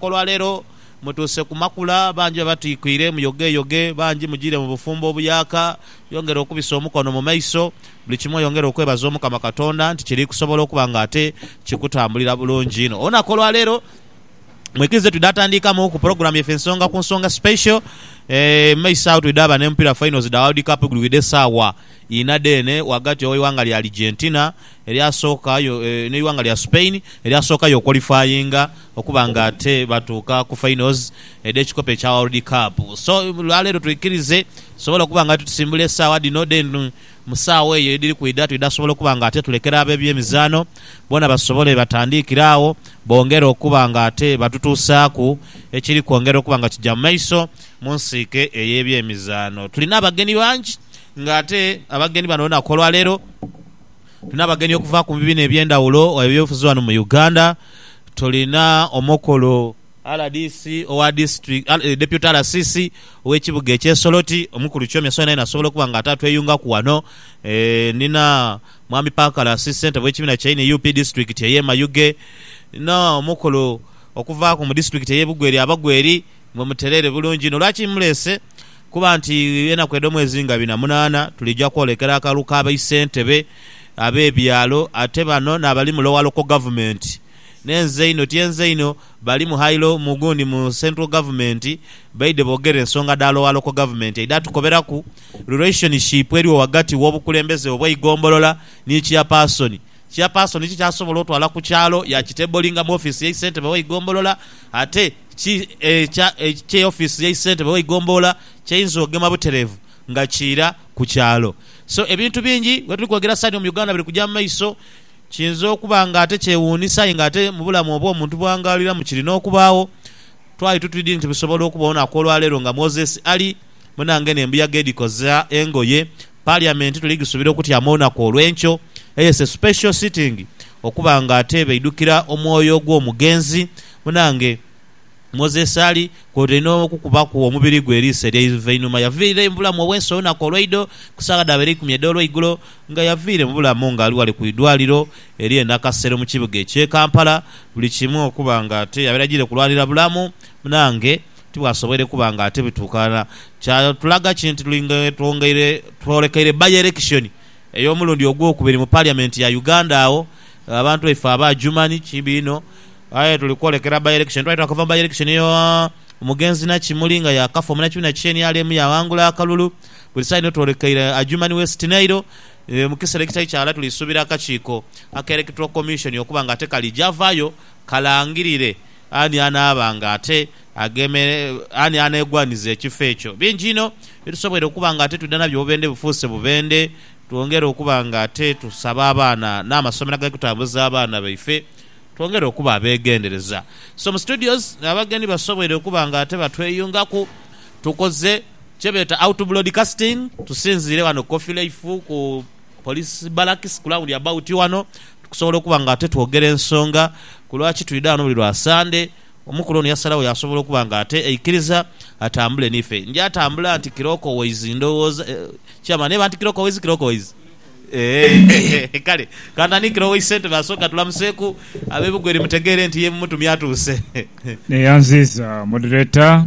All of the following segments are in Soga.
Olwaleero mutuuse ku makula, bangi babatwikwiire muyogeyoge, bangi mujiire mu bufumbo obuyaaka. Yongera okubisa omukono mu maiso, buli kimu oyongere okwebaza Omukama Katonda nti kiri kusobola okuba nga ate kikutambulira bulungi inho. Olunaku olwaleero mwikirize twidha tandiikamu ku pulogulaamu yaife ensonga ku nsonga special. Mu maiso agho twidha ba n'emupira finals dha World Cup egulwidha esaawa inha dheene ghagati ow'eighanga lya Argentina erya sooka yo n'eighanga lya Spain erya sooka yo qualifyinga. okuba nga ate batuuka ku finals edh'ekikopo ekya World Cup. So olwaleero twikirize tusobole okuba nga tusimbula esaawa dhino then mu saawa eyo edhiri kwidha twidha sobola okuba nga ate tulekera ab'ebyemizaano boona basobole batandiikire agho bongere okuba nga ate batutuusaaku ekiri kwongera okuba nga kija mu maiso mu nsiike ey'ebyemizaano. Tulina abagenyi bangi nga ate abagenyi bano olunaku olwaleero. Tulina abagenyi okuva ku bibiina eby'endhawulo gha byobufuzi ghano mu Uganda. Tulina omukulu rdc owa disitulikiti, Deputy RCC ow'ekibuga eky'e Soroti, omukulu Kyomya Sona yenha asobola okuba nga ate atweyungaku ghano. Ndina Mwami Parker Lasi, ssentebe w'ekibiina kya nup disitulikiti ey'e Mayuge. Ndina omukulu okuva ku mu disitulikiti ey'e Bugweri, Abagweri. Mwe mutereere bulungi inho. Lwaki mmuleese? Kuba nti enaku edh'omwezi nga bina munaana tuliija kwolekera akalulu ka baisentebe ab'ebyalo, ate bano n'abali mu lower local government ne nze inho tyenze inho, bali mu high lo mu gundi mu central government baidhe boogere ensonga dha lower local government aidha atukoberaku relationship eriwo ghagati w'obukulembeze obw'eigombolola ni chairperson. Chairperson kiki asobola otwala ku kyalo yakitablinga mu office y'eisentebe w'eigombolola ate Ki ekya ekye office yai sentebe wai gomboola kyainza ogema buterevu nga kiira ku kyalo. So ebintu bingi wetuli kwogera sani omu Uganda biri kuja mu maiso, kiinza okuba nga ate kyewuunisa aye nga ate mu bulamu obwo omuntu bwangaaliramu kiri n'okubaagho. Twali tutwidi nti bisobola okuba olunaku olwa leero nga Moses Ali munange n'embuyaga edhikoza engoye. Parliament tuli ghisubira okutyama olunaku olw'enkyo eye se special sitting okuba nga ate baidhukira omwoyo gw'omugenzi Munange, Moses Ali kwotaire n'okukubaku omubiri gwe eriiso ery'eiva einhuma yaviirayo mu bulamu obw'ensi olunaku olweidho ku saagha dhaaba eir'eikumi edh'olweigulo nga yaviire mu bulamu nga ali ghale ku idwaliro ery'e Nakasero mu kibuga eky'e Kampala. Buli kimu okuba nga ate yabaire ajiire kulwanira bulamu, munange, tibwasoboire kuba nga ate bituukana. Kyatulaga ki nti tuli nga twongeire twolekeire bayerekishoni ey'omulundi ogwokubiri mu Parliament ya Uganda agho abantu baife aba Adjumani, kibi inho, Aye tuli kwolekera by election twali twakava mu by election yo omugenzi Nakimuli nga yakafa omunakimuli na kiki nrm yaghangula akalulu buli saino twolekeire Adjumani West Nile mukisera ekitali kyaghala tuli subira akakiiko aka electoral commission okuba nga ate kalija vayo kalangirire ani anaaba nga ate agemere ani anegwaniza ekifo ekyo bingi inho byetusobweire okuba nga ate twidha nabyo obubendhe bufuuse bubendhe twongere okuba nga ate tusaba abaana namasomero agali kutambuza abaana baife Twongere okuba abegendereza. Somu Studios abagenyi basobweire okuba nga ate batweyungaku, tukoze kyebeeta out broadcasting tusinziire ghano ku Coffee Life ku Police Barracks ku round about ghano okusobola okuba nga ate twogera ensonga ku lwaki twidha ghano buli lwa Sande. Omukulu ono yasalagho yasobola okuba nga ate aikiriza atambule nife. Nja tambula nti Kirokoways ndhowooza, Chairman eba nti Kirokoways, Kirokoways. Eeh kale kantandikire ow'e Isentebe asooke atulamuseeku ab'e Bugweri mutegeere nti ye mumutumye atuuse. Neyanziiza Moderator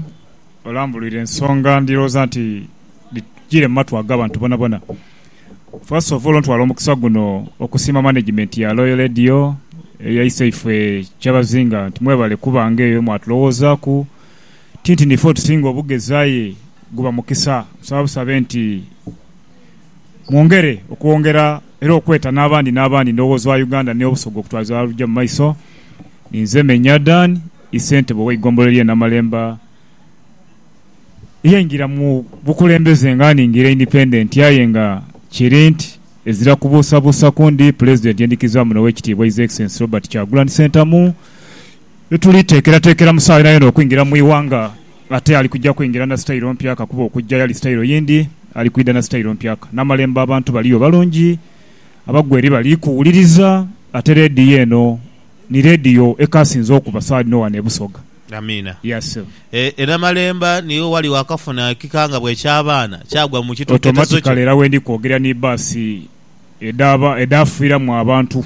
olambulwire ensonga ndhirowooza nti dhitugire mu matu ag'abantu bonabona. First of all ntwala omukisa guno okusiima Management ya Loyal Radio eyaisa ife Kyabazinga nti mwebale kubanga eyo mwatulowoozaku tinti nife otusinga obugezi aye guba mukisa. Nsaba busabe nti. mwongere okwongera era okweta n'abandi n'abandi endowooza wa Uganda n'Obusoga okutwaliza ghalala olugya mu maiso. Ninze Menya Dan, i Ssentebe ow'eigombolola ly'e Namalemba eyaingira mu bukulembeze nga nningira independent aye nga kiri nti ezira kubuusabuusaku ndi Pulezidenti endhikirizibwamu n'Owekitiibwa His Excellency Robert Kyagulanhi Ssentamu Ni tuli teekerateekera mu saawa yonayona okwingira mu ighanga. Ate ali kuja kwingira na sitayiro mpya kakuba okujja yali sitayiro yindi, ali kwidha na sitayiro mpya. N'amalembo abantu baliyo balungi, abagweri bali kuwuliriza, ate leediyo eno ni leediyo ekaasinze okuba saawa dhino wano e Busoga. Amiina. Yea, ssebo. E, e Namalemba niwo wali wakafuna ekikangabwa eky'abaana, kyagwa mu kitoketezo kyo. Automatically era wendi kwogerera ni bbaasi edhaba, edhaafiiramu abantu.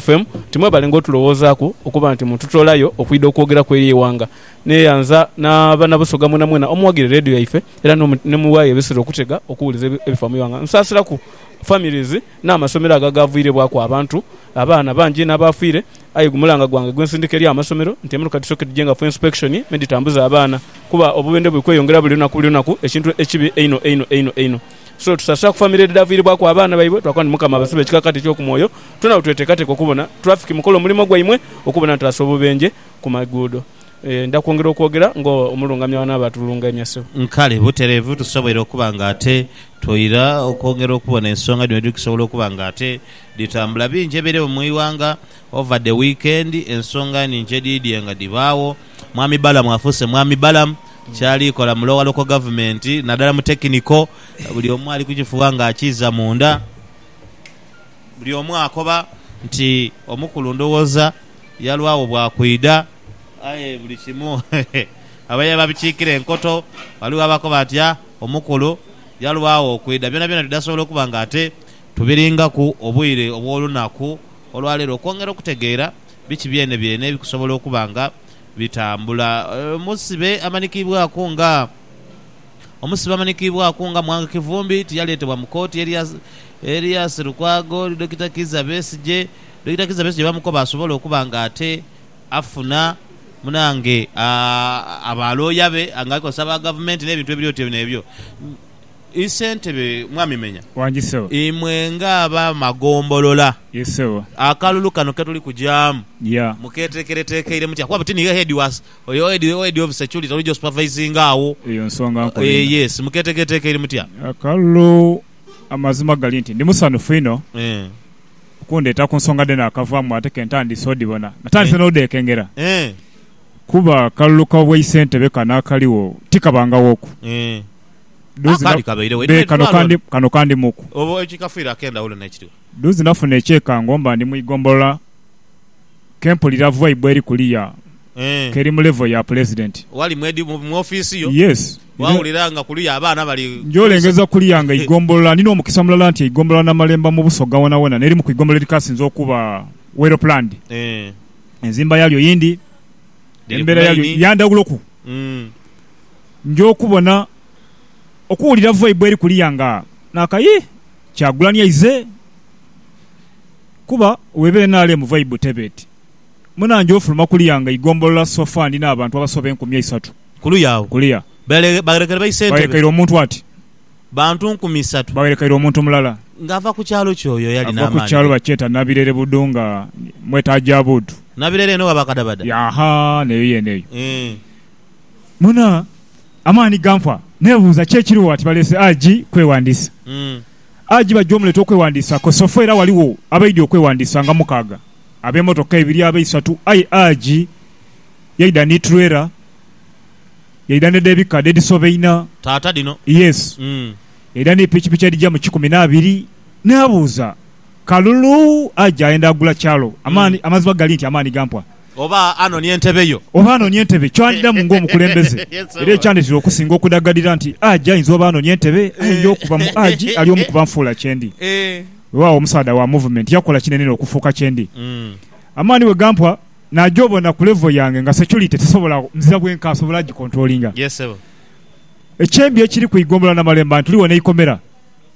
FM, timwebalenga otulowoozaaku okuba nti mututoolayo okwidha okwogeraku eri eighanga. Neyanza na bana Busoga mwenamwena omuwagire Radio yaife era nemuwaayo ebisera okutega okuwuliza ebifa mu ighanga. Nsaasiraku families n'amasomero ago agaavwirebwaku abantu, abaana bangi inho abaafiire aye gumulanga gwange gwensindika eri amasomero nti emiruka tusooke tugyengaku inspection medhitambuza abaana kuba obubendhe buli kweyongera buli lunaku buli lunaku ekintu ekibi einho einho einho einho. So tusaasira ku famire edhidhaaviiribwaku abaana baibwe. Twakoba nti Mukama abasibe ekikakati eky'oku mwoyo. Twena bwe tweteekateeka okubona tulafiki mukola omulimo gwaimwe okubona nti tutaasa obubenje ku maguudo. Ndidha kwongera okwogera ng'omulungamya w'anaaba atulungaimya, Ssebo. Nkale butereevu tusobweire okuba nga ate twoira okwongera okubona ensonga dhino edhikusobola okuba nga ate dhitambula. Bingi ebireewo mu ighanga over the weekend, ensonga nhingi edhidhie nga dhibaagho. Mwami Balamu afuuse Mwami Balamu. kyali kola mu lowa loko gavumenti nadala mu tekiniko buli omu ali kukifuba nga akiiza munda buli omu akoba nti omukulu ndhowoza yalwagho bwa kwidha aye buli kimu abaire babikiikira enkoto ghaligho abakoba nti ah omukulu yalwagho okwidha byonabyona tidhasobola okuba nga ate tubiringaku obwire obwolunaku olwaleero okwongera okutegeera biki byenebyene ebikusobola okuba nga bitambula. Omusibe amanikiibwaku nga Omusibe amanikiibwaku nga Mwanga Kivumbi tiyaleetebwa mu kooti erya erya Sserukwago, Dokita Kizza Besigye. Dokita Kizza Besigye baamukoba asobole okuba nga ate afuna munange aa abalooya be nga alikozesa aba Gavumenti n'ebintu ebiri otyo n'ebyo. Isentebe Mwami Menya, imwe nga aba magombolola akalulu kano ketuli kujaamu muketekeretekeire mutya kuba buti niye head wa head of security oli josupervisinga agho yes muketekeretekeire mutya? Akalulu amazima gali nti ndi musanhufu inho okundheeta ku nsonga dhene akavaamu ate ke ntandise odhibona natandise n'odhekengera kuba akalulu ka bwaisentebe kano akaligho tikabangaghoku. Duzi Akandi na- kabairegho. Be, kano Edwaliro kandi, ono. kano kandi muku. Obo ekikafiire ak'endhawulo n'ekiriwo. Duzi nafuna ekyekango mba ndi mu igombolola ke mpulira vibe eri kuliya Eeh. ke eri mu level ya Pulezidenti. Wali mu edi, mu, mu ofiisi yo, Yes. Era waawulira nga kuliya abaana bali. njolengeza kuliya nga igombolola, ndina omukisa mulala nti eigombolola Namalemba mu Busoga wonawona n'erimu ku igombolola edhikasinze okuba well planned. Eeh. Enzimba yaalyo yindi, Liri ku embera yaalyo layini. ya ndhawuloku. Mm. Nja okubona okuwulira voi bweri kuliya nga naka yii kyagulanyi aize kuba weba nrm vibe teba eti munange ofuluma kuliya nga igombolola so far ndina abantu abasoba enkumi eisatu Kuluya agho kuliya bagherekaire baise entebe. Bagherekaire omuntu ati. Bantu nkumi isatu. Bagherekaire omuntu mulala. Nga ava ku kyalo ki oyo eyali n'amaani? Ava ku kyalo bakyeta Nabirere Budu nga mweta Ajabudu. Nabirere eno gha bakadabada? Yaaha neyo yeene eyo. Eeh. Muna, amaani ganfa. Nebuuza ki ekiriwo ati baleese AG kwewandiisa. AG bajja omuleta okwewandiisa kosofu era waliwo abaidya okwewandiisa nga mukaaga, abemotoka ebiri, abeisatu aye AG yaidha ni trailer, yaidha ne dhebika dhedhisoba ina, Taata dhino. yes, yaidha ni pikipiki edhija mu kikumi n'abiri. Nabuuza. Kalulu aja ayenda agula kyalo. Amaani, amazima gali nti amaani gampwa. Oba anonia entebe yo. Oba anonia entebe, kyandidhamu ng'omukulembeze. Era ekyandetera okusinga okudaghalira nti Haji ayinza oba anonia entebe, ayinja okuba mu Haji ali omu ku banfuula kyendi. Wewaawo omusaadha wa movement yakola kinene inho okufuuka kyendi. Amaani bwe gampwa, naja obona ku level yange nga security tisobola nzira bwenka, asobola agikontrolinga. Ekyembi ekiri ku Ighombolola Namalemba nti tuli wano eikomera.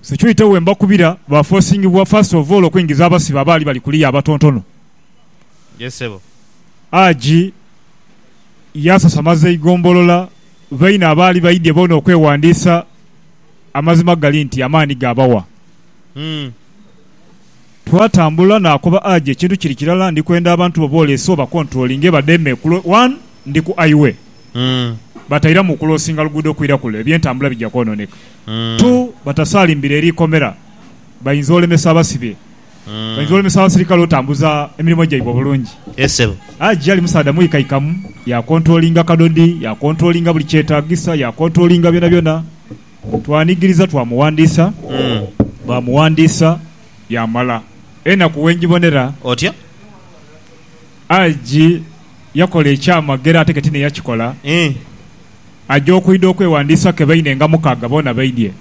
Securite we mbakubira ba forcingibwa first of all okuingiza abasibe abaali bali kuliya abatontono. Yes sebo. AG yasasamaza eigombolola baine abaali baidye boona okwewandiisa amazima gali nti amaani gaabawa. Twatambula naakoba Aje ekintu kiri kirala ndi kwenda abantu bo booleese obakontulolinge bademe okulo one ndi ku Iway batairamu okulosinga luguudo kwira kule ebyentambula bija kwononeka two batasaalimbire eri ikomera bayinza olemesa abasibe bayinza olemesa abasirikale otambuza emirimo gyaibwe obulungi. Yes sebo. Aje ali musaadha mwikaikamu yakontulolinga kadodi yakontulolinga buli kyetagisa yakontulolinga byonabyona twanigiriza twamuwandiisa baamuwandiisa yaamala enaku wenjibonera. Otyo. Aji yakola ekyamagero ate ketini eyakikola. Ii. Aja okwidha okwewandiisa ke baine nga mukaga boona baidhie.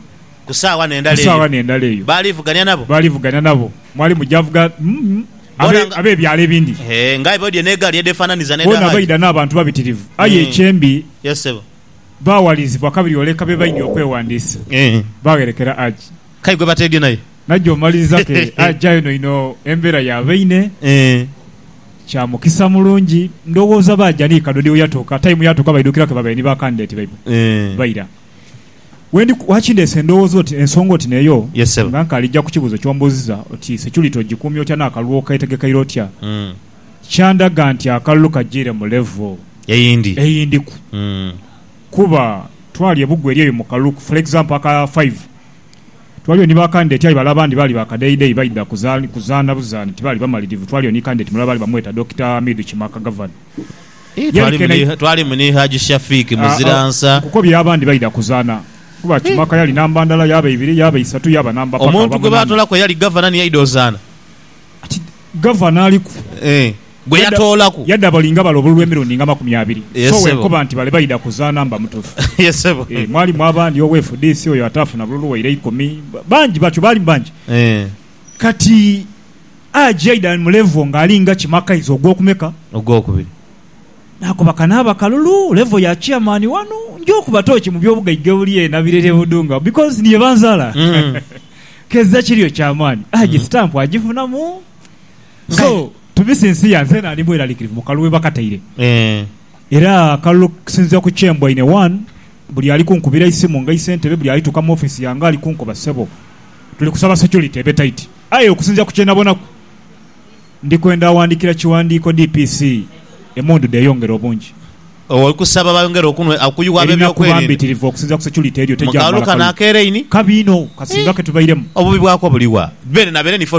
Ku saagha n'endala eyo. Ku saagha n'endala eyo. Baalivugania nabo. Baalivugania nabo. Mwalimu javuga mm abe, ab'ebyalo ebindi. Hee, ng'aye baidhie n'egaali edheefaananiza n'edha Haji. Boona baidha n'abantu babitirivu. Aye ekyembi. Yes, ssebo. Baawalirizibwa kabirioleka be baidhie okwewandiisa. Ii. Baagherekera Haji. K'aye gwe bateedhye naye. Naija omaliriza ke aja eno ino embera ya baine. Eeh. Kya mukisa mulungi. Ndhowooza baaja ni kadodi we yatuuka, time yatuuka baidhukira ke babaire ni ba candidate baibwe. Eeh. Baira. Wendi ku, lwaki ndeese endhowooza oti, ensonga oti n'eyo, Yes ssebo. nga nkaali ja ku kibuuzo ky'ombuuzizza oti security ogikuumye otya n'akalulu okeetegekeire otya, Mm. kyandaga nti akalulu kajiire mu level Eyindi. eyindiku. Mm. Kuba twali e Bugu eri eyo mu kalulu, for example aka five, Twaliyo ni ba kandideti aye bale abandi baali ba kadheidhei baidha kuzaana buzaani tibaali bamalirivu. Twaliyo ni kandideti mulala baali bamweta Dokita Hamidu Kimaka Gavana ye. Twalimu ni Haji Shafiq Muziransa. Nkukobye abandi baidha kuzaana kuba Kimaka yali namba ndala, yaaba ibiri, yaaba isatu, yaaba namba paka aba munana. Omuntu gwe baatolaku eyali Gavana ni yaidha ozaana? Kati Gavana aliku. gwe yatoolaku. Yadha abalinga bale obululu emirundi nga makumi abiri. So wenkoba nti bale baidha kuzaana mba mutufu. Eeh mwalimu abandi owe fdc oyo ataafuna bululu waire eikumi. Bangi batyo baalimu bangi. Kati Haji aidha mu level nga alinga Kimakaizi ogwokumeka? Ogwokubiri. Nakoba kanaaba kalulu level ya chairman wano. Nja okuba tooki mu byobugaiga ebuli eno Abireri e Budunga because ni yebanzaala. Kezza kiriyo kyamaani. Haji stamp agifunamu. So, tubise ensi ya nze naali mweralikirivu mu kalulu we bakataire. Era akalulu okusinziira ku kye mboine, one, buli ali kunkubira eisimu nga ise ntebe, buli alituuka mu office yange ali kunkoba ssebo tuli kusaba security ebe tight. Aye okusinziira ku kye nabonaku, ndi kwenda awandiikira kiwandiiko DPC emundu dheyongere obungi. Oli kusaba bayongere okunwe, okuyugha Erina kuba ab'ebyokwerinda? mbitirivu okusinziira ku security eriyo Mu tejja kalulu kumala kano kalulu ak'eraini? kabi inho kasinga ke tubairemu. Obubi bwako buli wa? Beene na beene nife